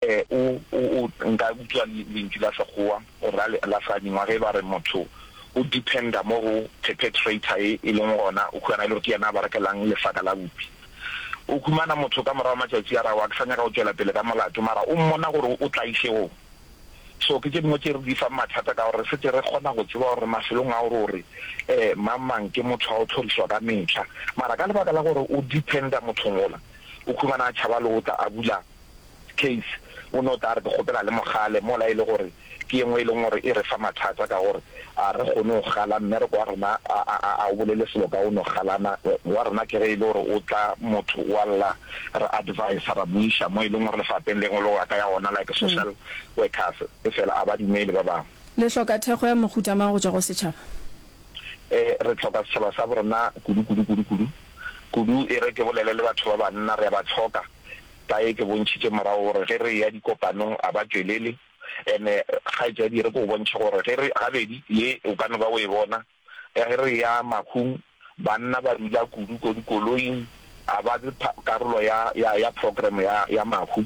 O, o, o, nka utswa le, lentšu la Sekgowa go ra le, la sadingwa, ge ba re motho o dependa mo go perpetrator e, e leng gona o humana e le gore ke yena a berekelang lesaka la bupi. O humana motho ka morago matšatši a re, Aowa, ke sa nyaka go tšwela pele ka molato, mara o mmona gore o tlaiše o. So ke tše dingwe tše re di fang mathata ka gore re se ke re kgona go tseba gore mafelong ao re o re, um, mang mang ke motho wa go tlhorišwa ka mehla. Mara ka lebaka la gore o dependa mothong ola, o humana a tšhaba le go tla a bula. case o no tla re ke kgopela le mogale mola e le gore ke yengwe e leng gore e re fa mathata ka gore a re kgone go gala mmereko wa rena a a a a o bolele selo ka o no galana wa rena ke ge e le gore o tla motho wa lla re advise ra buiša mo e leng gore lefapeng lengwe lo ka ya gona like social workers e fela a ba dumele ba bangwe Le hloka thekgo ya mohuta mang go tšwa go setšhaba? E, re tlhoka setšhaba sa borena kudu kudu kudu kudu kudu e re ke bolele le batho ba banna re a ba tlhoka. Taye ke bontšhitše morago gore ge re eya dikopanong a ba tšwelele, and-e kgaetšadi re ke go bontšhe gore ge re, gabedi ye o ka no ba o e bona, ge re eya makhung banna ba dula kudu ko dikoloing, a ba karolo ya, ya, ya program ya, ya makhu.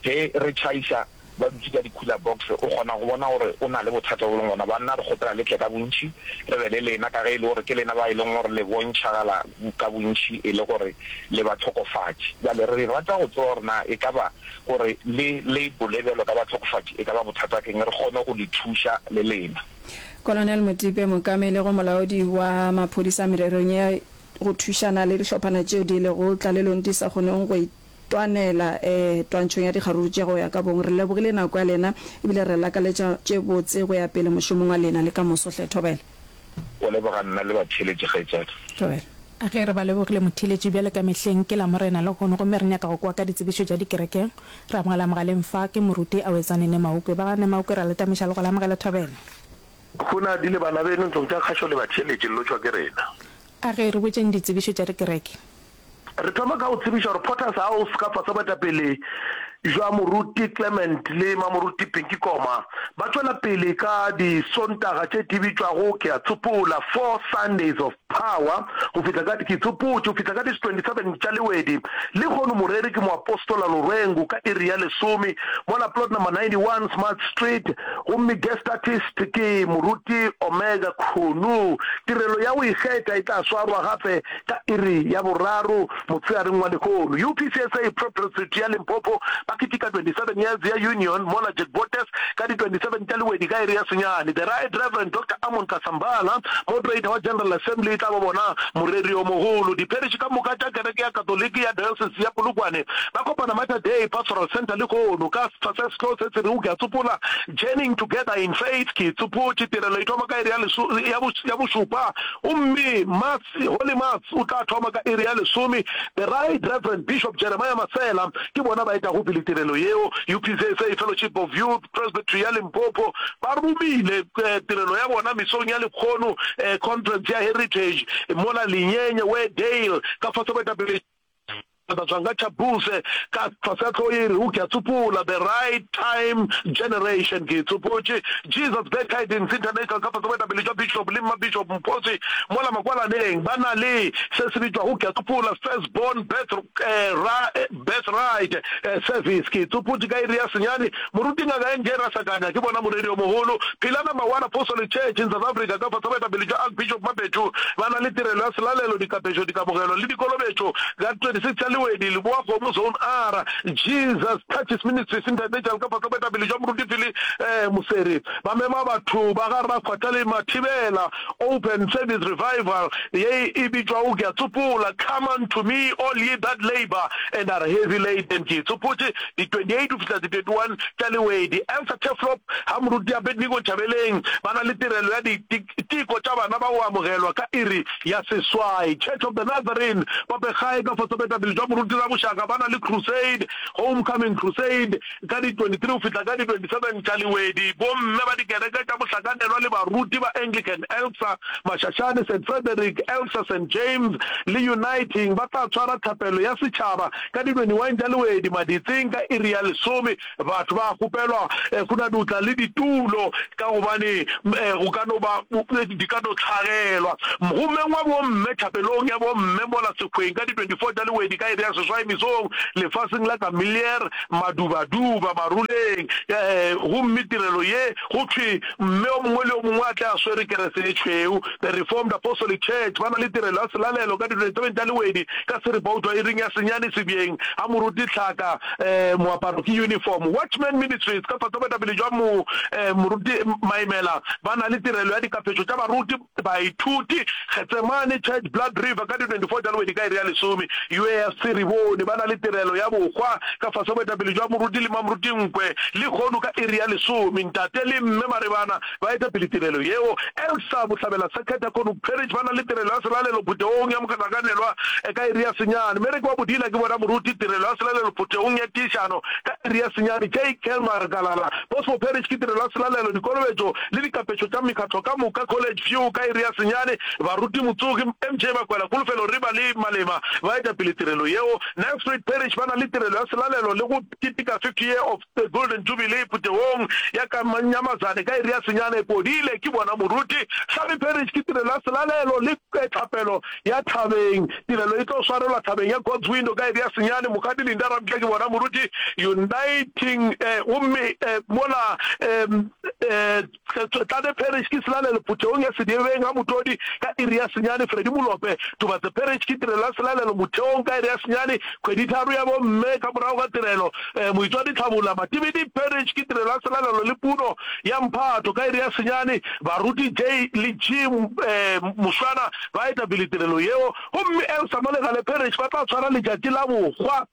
Ge re tšhaiša ba dutše ka di-cooler box, o kgona go bona gore o na le bothata bo leng gona. Banna re kgopela le tle ka bontši, re be le lena, ka ge e le gore ke lena ba e leng gore le bontšhagala ka bontši e le gore le bahlokofatši. Bjale re rata go tseba gore na e ka ba gore le le bole bjalo ka bahlokofatši e ka ba bothata ke eng, re kgone go le thuša le lena. Colonel Motipe, Mookameli go Molaodi wa Maphodisa mererong ya go thušana le dihlophana tšeo di lego tlalelong di sa kgoneng go Twanela, ee, twantšhong ya dikgaruru tše go ya ka bong. Re lebogile nako ya lena e bile re lakaletša tše botse go ya pele mošomong wa lena le ka moso. Hle Thobela. O leboga nna le batheeletši, kgaetšadi. Thobela. Ge re ba lebogile motheeletši, bjale ka mehleng ke Lamorena lehono gomme re nyaka go kwa ka ditsebišo tša dikerekeng. Re amogela mogaleng fa ke moruti Awetsane Nemaukwe. Ba ga Nemaukwe ra le tameša le go le amogela Thobela. Gona di le bana beno ntlong tša kgašo le batheeletši, le lotšwa ke rena. A ge re botšeng ditsebišo tša dikereke. Re thoma ka go tsebiša gore Potters a o seka fase boetapele bja Moruti Clement le Mamoruti Pinky Koma ba tšwela pele ka Disontaga tše di bitšwago Ke a Tsopola, Four Sundays of Power, go fihla ka Ke Tsopotše go fihla ka di 27 tša Lewedi. Lehono moreri ke Moapostola Lorwengu ka iri ya lesome mola Plot Number 91 Smart Street, gomme Guest Artist ke Moruti Omega Khunu. Tirelo ya go ikgetha e tla swarwa gape Ka iri ya boraro motshegareng wa lehono, UPCSA Pro Prestrate ya Limpopo ba ketika 27 years ya Union mola Jack Bottas ka di 27 tša lewedi ka iri ya senyane. The Right Reverend Doctor Amon Kasambala, Moderator wa General Assembly, e tla ba bona moreri o mogolo. Dipherši ka moka tša Kereke ya Katoliki ya Diocese ya Polokwane ba kopana Mater Dei Pastoral Centre lehono ka setsha se sehlogo se se rego Ke a Tsopola, Journeying Together in Faith, Ke Tsopotše. Tirelo e thoma ka iri ya bošupa gomme ma. Holy Mass o tla thoma ka iri ya lesome. The Right Reverend Bishop Jeremiah Masela ke bona ba etago pele tirelo yeo. UPCSA Fellowship of Youth Presbytery ya Limpopo ba romile tirelo ya bona Misong ya Lekgono, Conference ya Heritage, mola Linyenye, Weardale, ka fase boetapele Taba Tswanga Thabuse ka tlase a tlo e re o ke a tsopola the right time generation ke e tsopotše Jesus Glad Tidings International ka fase boetapele jwa Bishop le Mmabishop Mphotsi mola Makwalaneng ba na le se se bitšwago ke a tsopola First Born Birth Birthright Service ke e tsopotše ka iri ya senyane Moruti Ngaka NJ Rasakanya ke bona moreri o mogolo. Philana Mawala Apostolic Church in South Africa ka fase baetapele bja Archbishop Mapethu ba na le tirelo ya selalelo, dikapešo, dikamogelo le dikolobetšo ka 26 ya Lewedi, Leboakgomo Zone R. Jesus Touches Ministries International ka fase boetapele bja Moruti Philly Moseri ba mema batho ba ga Rra Kgwathale Mathibela. Open Service Revival ye e bitšwago Ke a Tsopola Come unto me all ye that labour and are heavy laden Ke itsopotše, di 28 go fihla di 31 tša Lewedi, Elsa Turfloop ha Moruti Abednego Nchabeleng ba na le tirelo ya diteko tša bana ba go amogelwa ka iri ya seswai, Church of the Nazarene, Popegae ka fosa boetapele bja Moruti Raboshaka ba na le Crusade, Homecoming Crusade, ka di 23 go fihla ka di 27 tša Lewedi, Bomme ba dikereke tša Mohlakanelwa le Baruti ba Anglican Elsa Mashashane, Saint Frederick, Elsa Saint James le Uniting ba tla tshwara thapelo ya setšhaba Ka dinonyuweng tša lewedi maditseng ka iri ya lesome, batho ba a kgopelwa go na dutla le ditulo ka gobane go ka no ba di ka no hlagelwa. Mgomeng wa bomme, thapelong ya bomme mola sekgweng ka di 24 tša lewedi ka iri ya seswai mesong, lefaseng la Camilliere, madubaduba, maruleng, gomme tirelo ye Go thwe mme o mongwe le o mongwe a tle a swere kerese e tšhweu. The Reformed Apostolic Church ba na le tirelo ya selalelo ka diretebeng tša lewedi ka seripoutwa iring ya senyane sebjeng ga moruti tlhaka. Moaparo ke yunifomo. Watchman Ministries ka fatabetapele jwa moruti maimela ba na le tirelo ya dikaphetšo tša baruti. Baithuti, Getsemane Church, Blood River, ka di 24 tša Lwedi ka iri ya lesome UASC, re bone ba na le tirelo ya bohwa ka fase ga boetapele jwa Moruti le Mamruti Nkwe, lehono ka iri ya lesome Ntate le Mme Maribana ba eta pele tirelo yeo. Elsa Bohlabela Circuit ya Cornwood Parish ba na le tirelo ya selalelo phuthegong ya mohlakanelwa ka iri ya senyane. Mereke wa Bodila ke bona Moruti, tirelo ya selalelo phuthegong ya tiišano ka iri ya senyane. JK Magalala, Bosmo Parish ke tirelo ya selalelo, dikolobetšo, le dikapetšo tša mekgatlo ka moka, College View ka iri ya senyane, baruti, motsogi, MJ Bakwela, Kulufelo Riba le Malema ba eta pele tirelo yeo. Nelspruit Parish ba na le tirelo ya selalelo le go keteka 50 year of the Golden Jubilee putegong ya ka Nyamazane ka iri ya senyane. Podile ke bona moruti. Hlabi Parish ke tirelo ya selalelo le tlhapelo ya thabeng. Tirelo e tlo swarelwa thabeng ya God's Window ka iri ya senyane. Mokgadi Linda Ramtla ke bona moruti. Uniting eh gomme eh mola eh um Tlade Parish ke Selalelo Phuthehong ya Sediebeng ga Motodi ka iri ya senyane Freddy Molope Tubatse Parish ke Tirelo ya Selalelo Motheong ka iri ya senyane Kgweditharo ya Bomme ka morago ga tirelo um Moitswadi Tlhabula Matibidi Parish ke Tirelo ya Selalelo le Puno ya Mphato ka iri ya senyane Baruti J le G um Mošwana ba etapele tirelo yeo gomme Elsa mo Legale Parish ba tla tshwara letšatši la bokgwa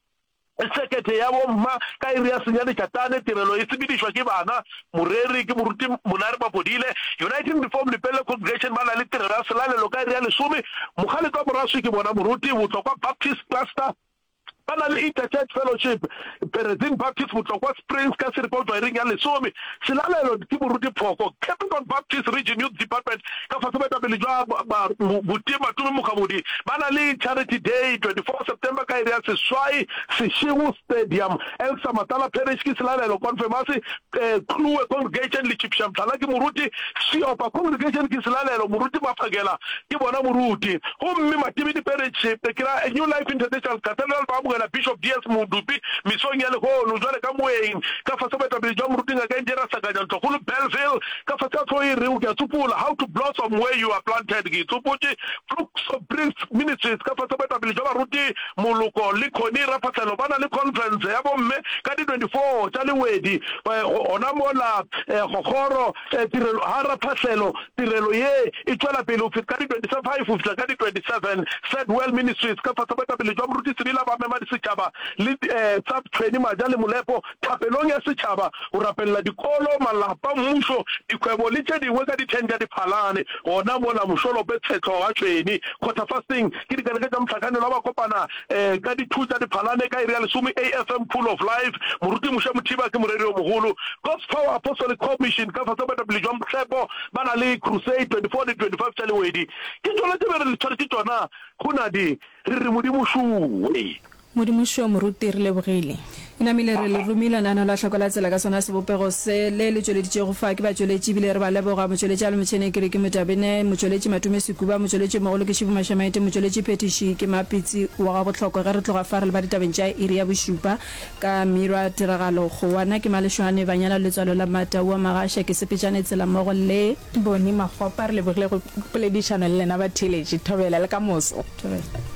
Sekete ya bomma, ka iri ya senyane tša tane, tirelo e sepedišwa ke bana, moreri ke moruti Monare Mapodile, Uniting Reform Lepelle Congregation ba na le tirelo ya selalelo ka iri ya lesome, Mokgalete wa Moraswi ke bona moruti, Botlokwa Baptist Cluster ba na le Interchurch Fellowship, Perezin Baptist Botlokwa Springs ka Siripa o tšwa iring ya lesome, Selalelo ke boruti phoko Capricorn Baptist Region Youth Department ka fase Baetapele jwa ba Buti Matumi Mokgabodi ba na le Charity Day 24 September ka iri ya seswai Seshego Stadium Elsa Matala Parish ke Selalelo Confirmasi Kluwe Congregation Lechipša Mthala ke moruti Seopa Congregation ke selalelo, moruti Maphakela ke bona moruti, gomme Matebedi Parish Pekela New Life International Cathedral ba amogela Bishop DS. Modupi mesong ya lehono, bjale ka moeng, ka fase ga boetapele bja Moruti Ngaka Engineer Sakanya Ntlokgolo Bellville, ka fase ga hlogo e rego Ke a Tsopola, How to Blossom Where You Are Planted, Ke Itsopotše, Flux of Breath Ministries, ka fase ga boetapele bja baruti Moloko le Connie Rafatlhelo ba na le khonferense ya bomme ka di 24 tša Lewedi gona mola go kgoro tirelo ha Rafatlhelo. Tirelo ye e tšwela pele go fihla ka di 25 go fihla ka di 27. Sad Well Ministries ka fase boetapele jwa Moruti Sibila ba mema disetšhaba le tsa Tshweni Maja le Molepo. thapelong ya setšhaba, go rapelela dikolo, malapa, mmušo, dikgwebo le tše dingwe ka dihleng tša diphalane. Gona mola mošolope, tshehlo, gatšweni, quarter-fasting, ke dikereke tša mohlakanelwa ba kopana ka di two tša diphalane ka iri ya lesome AFM Pool of Life, Moruti Mushe Mothiba ke moreri yo mogolo. God's Power Apostolic Commission ka fase ga boetapele bja Motsepo ba na le Crusade 24 le 25 tša Lewedi. Ke tšona tše be re le tshwaretše tšona go na di, re re Modimo šuwe. Modimošo moruti re lebogile. E namile re le romile lenaneo la hloko la tsela ka sona sebopego se le le tšweleditšego fa. Ke ba tšweletši ebile re ba leboga, motšweletši Alo Motšhene ke re ke Motabene, motšweletši Matume Sekuba, motšweletši mogolo ke Shivu Mashamaite, motšweletši phethiši ke Mapitsi wa ga Bohlokwa. Ge re tloga fa re leba ditabeng tša iri ya bošupa ka Mirwa Tiragalo Kgowa na ke Malešwane Banyana Letswalo la Mata Ua Magasha ke Sepetšane Tsela mmogo le. Boni Makgopa re lebogile go poledišano le lena batheeletši. Thobela le ka moso. Thobela.